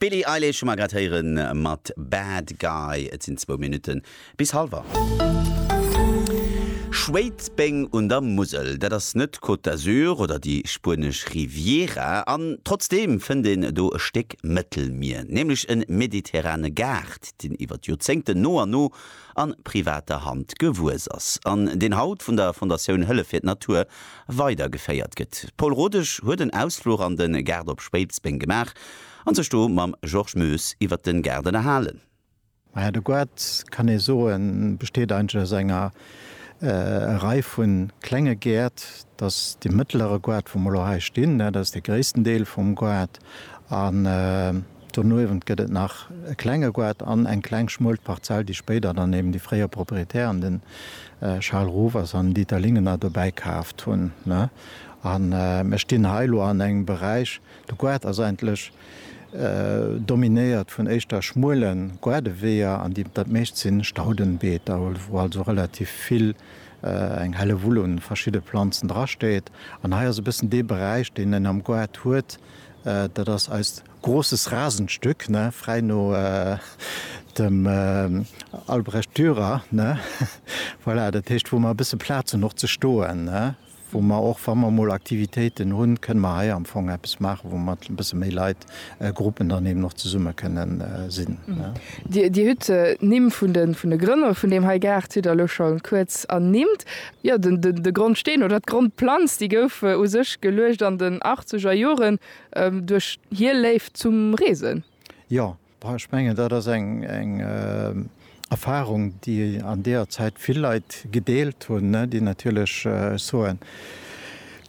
D'Billie Eilish hu mer grad héiere mat Bad Guy. Et sinn zwou Minutte bis hallwer. Schwéidsbeng un der Musel, dat ass net d'Côte d'Azur oder déi spuenesch Riviera. An trotzdeem fënnt een do e Stéck Mëttelmier, nämlech e mediterrane Gaart, deen iwwer d'Joerzéngten no an no a privater Hand gewuess ass an deen haut vun der Fondatioun Hëllef fir d'Natur weidergeféiert gëtt. D'Paule Rodesch huet en Ausfluch an de Gaart op Spéipsbéng gemaach an sech do mam Georges Moes iwwert den Gaart ënnerhalen. Maja, de Gaart, kann ee soen, besteet eigentlech aus enger Rei vu klenge Gäert. Et ass dee mëttelere Gaart, wou mer elo hei stinn, dat ass dee gréissten Deel vum Gaart. Doniewent gëtt et nach e klenge Goart an eng kleng schmuel Parzell, déi spéider dann eben déi fréier Proprietären, den Charles Rovers an Dieter Lingener, dobäi kaaft hunn. A mir stinn hei elo an engem Beräich, de Goart ass eigentlech dominéiert vun éischter schmuele Goardeweeër an déi dat meescht si Staudenbeeter, wou also relativ vill, eng Hellewull un verschidde Planzen drasteet. An hei ass e bëssen dee Beräich, deen en am Goart huet, Dat ass eist großes Rasenstück, ne, frei no dem Albrecht Dürer, ne, voilà, dat heescht, wou mer e bësse Plaz hunn och ze stoen, ne, wou mer och, wa mer emol Aktivitéiten hunn, kënne mer hei am Fong eppes maachen, wou mer e bësse méi Leit, Gruppen dann eben och zesumme kënne sinn, ne. Dir hutt d'Nimm vun de Grënner vun deem hei Gaart hutt Der elo scho kuerz ernimmt. Jo, de Grondsteen oder d'Grondplanz, déi gouf u sech geluecht an den achtzeger Joren duerch hir Léift zum Reesen. Jo, ech mengen, dat ass eng Erfarung, déi an deeër Zäit vill Leit gedeelt hunn, déi natierlech, ech soen,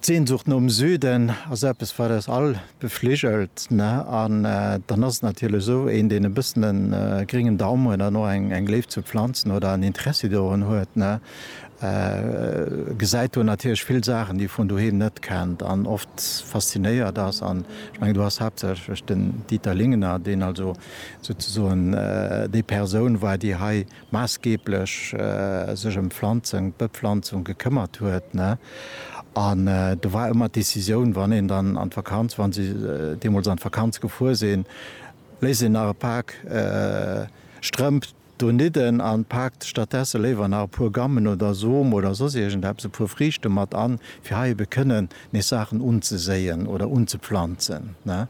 D'Sehnsucht nom Süden ass eppes, wat eis all befligelt. An dann ass et natierlech esou, een, deen e bëssen e gréngen Daum huet an och eng Léift zu Planzen oder en Interessi dorun huet, gesäit do natierlech vill Saachen, déi e vun doheem net kennt an oft faszinéiert ass. An ech mengen, do ass haaptsächlech den Dieter Lingener, deen also souzesoen déi Persoun war, déi hei maassgeeblech sech ëm d'Pflanzung, d'Bepflanzung gekëmmert huet, ne? An do war ëmmer d'Decisioun, wann een dann an d'Vakanz, wa si deemools an d'Vakanz gefuer sinn, léisst een nach e Pak Strëmp donidden an paakt stattdesse léiwer nach e puer Gammen oder Som oder soss iergendeppes, e puer Friichte mat an, fir hei ebe kënnen nees Saachen unzeséien oder unzepflanzen, ne?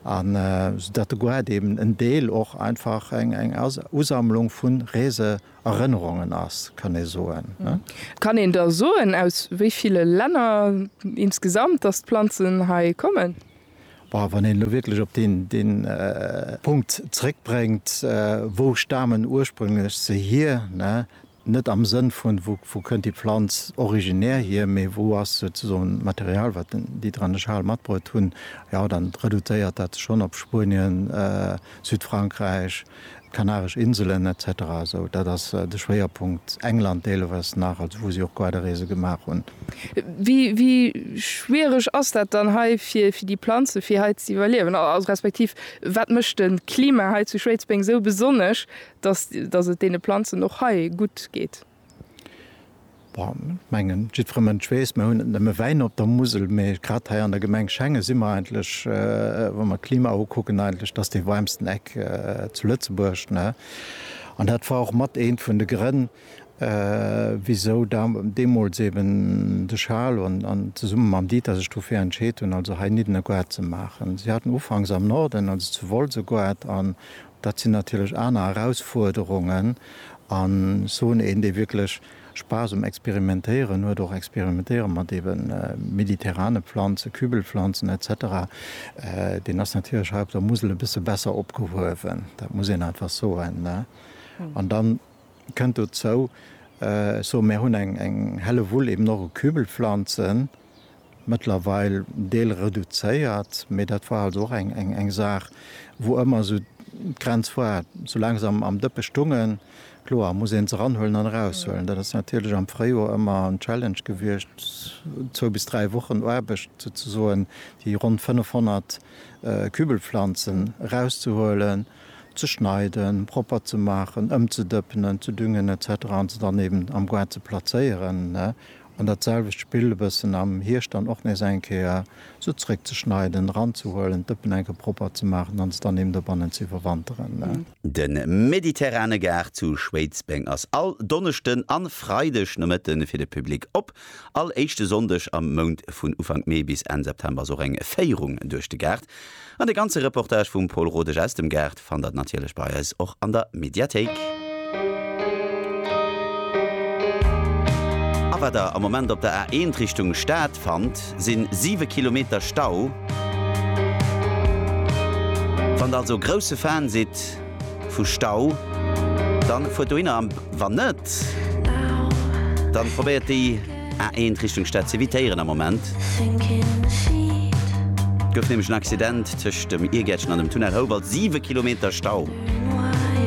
An soudatt de Goethe eben en Deel och einfach eng Usammlung vu Reeserënnerungen ass, kann ee soen. Kann een da soen, aus wéi ville Länner insgesamt dass d'Planzen hei kommen? Bon, wann een elo wierklech op dee Punkt zréckbréngt, Wou stamen ursprünglech se hier? Net am Sënn vun, wou kënnt déi Planz originär hier, mee wou ass souzesoen d'Material, wat den Dieter an de Charles matbruet hunn. Jo, dann reduzéiert dat sech schonn op Spuenien, Südfrankräich, d'Kanaresch Inselen, etc. Esou, dat ass de Schwéierpunkt. England deeleweiss nach, also wou si och Quaderreese gemaach hunn. Wéi schwiereg ass dat dann hei fir déi Planze fir hei z'iwwerliewen? Respektiv, wat mécht de Klima hei zu Schwéidsbeng esou besonnesch, Dass, dass et deene Planzen och hei gutt geet. Bon, ech mengen, jiddfere Mënsch weess, mer hunn net nëmme Wäin op der Musel, mee grad hei an der Gemeng Schengen si mer eigentlech, wa mer d'Klima ukucken, eigentlech dass dee waarmsten Eck zu Lëtzebuerg. Ne? An dat war och mat eent vun de Grënn, wisou deemools eeben de Charles an zesumme mam Dieter sech dofir entscheet hunn, also hei Niddenegoard ze maachen. Si haten ufanks am Norden, also zu Wolsegoard an Dat sinn natierlech aner Erausfuerderungen an ech soen, een dee wierklech Spaass um Experimentéieren huet, och experimentéiere mat ebe mediterrane Planzen, Kübelpflanzen et cetera, deen ass natierlech hei op der Musel e bësse besser opgehuewen, dat muss een einfach soen. An da kënnt dozou, ech soen, mir hunn eng Hällewull eben och u Kübelpflanzen, mëttlerweil Deel reduzéiert, mee dat war also och eng Saach, wou ëmmer esou d'Grenz war, soulaang se am Dëppe stungen, kloer muss ee se eranhuelen an eraushuelen. Dat ass natierlech am Fréijoer ëmmer en Challenge gewiescht, zwou bis dräi Wochen Aarbecht souzesoen, déi ronn 500 Kübelpflanzen erauszehuelen, ze schneiden, propper ze maachen, ëmzedëppenen, ze düngen, etc. An se dann eben am Goart ze plazéieren. An dat selwecht Spill e bëssen am Hierscht dann och nees eng Kéier se zréckzeschneiden, eranzehuelen, d'Dëppen eng Kéier propper ze maachen an se dann eben dobannen ze iwwerwanteren. De Mediterrane Gaart zu Schwéidsbeng ass all Donneschden an Freideg Nomëtte fir de Public op. All éischte Sonndeg am Mount, vun Ufank Mee bis Enn September, ass och eng Féierung duerch de Gaart. An de ganze Reportage vum Paul Rodesch aus dem Gaart fannt der natierlech bei eis och an der Mediathéik. A wat der am Moment op der A1 Richtung Stad fannt, sinn 7 Kilometer Stau. Wann der also e grousse Fan sidd vu Stau, dann fuert dohinner, an wann net, dann probéiert déi. A1 Richtung Stad ze evitéieren am Moment. Et gouf nämlech en Accident tëscht dem Irgäertchen an dem Tunnel Houwald. Siwe Kilometer Stau.